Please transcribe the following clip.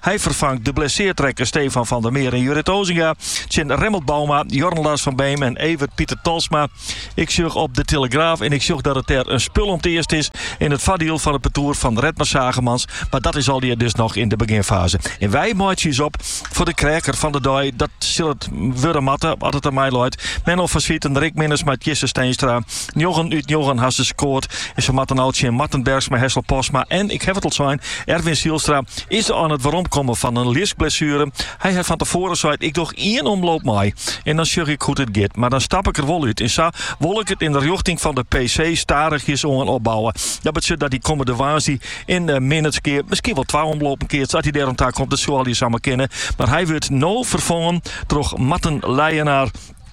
Hy ferfangt de blesseard rekke Stefan van der Meer en Jurrit Osinga tsjin Remmelt Bouma, Jorn Lars van Beem en Evert Pieter Tolsma. Ik sjoch op de telegraaf en ik sjoch dat it dêr in spul om te earst is yn it foardiel fan it partoer fan Redmer Zaagemans, mar dat is allegear dus noch yn de beginfaze. En wy meitsje ús op foar de kreaker fan de dei, dat sil it wurde moatte as it oan my leit. Menno van Zwieten, Rick Minnesma, Tjisse Steenstra. Njoggen út njoggen ha se skoard en se moatte no tsjin Marten Bergsma, Hessel Postma en, ik haw it al sein, Erwin Zijlstra. Is er oan it weromkommen fan in liskblessuere. Hy hat fan tefoaren seid, ik doch ien omloop mei en dan sjoch ik hoe't it giet. Mar dan stap ik der wol út en sa wol ik it yn de rjochting fan de PC stadichjes oan opbouwe. Dat betsjut dat hy kommende woansdei yn Minnertsgea, miskien wol twa omlopen keatst as hy dêroan takomt. It soe allegearre samar kinne, mar hy wurdt no ferfongen troch Marten Leijenaar.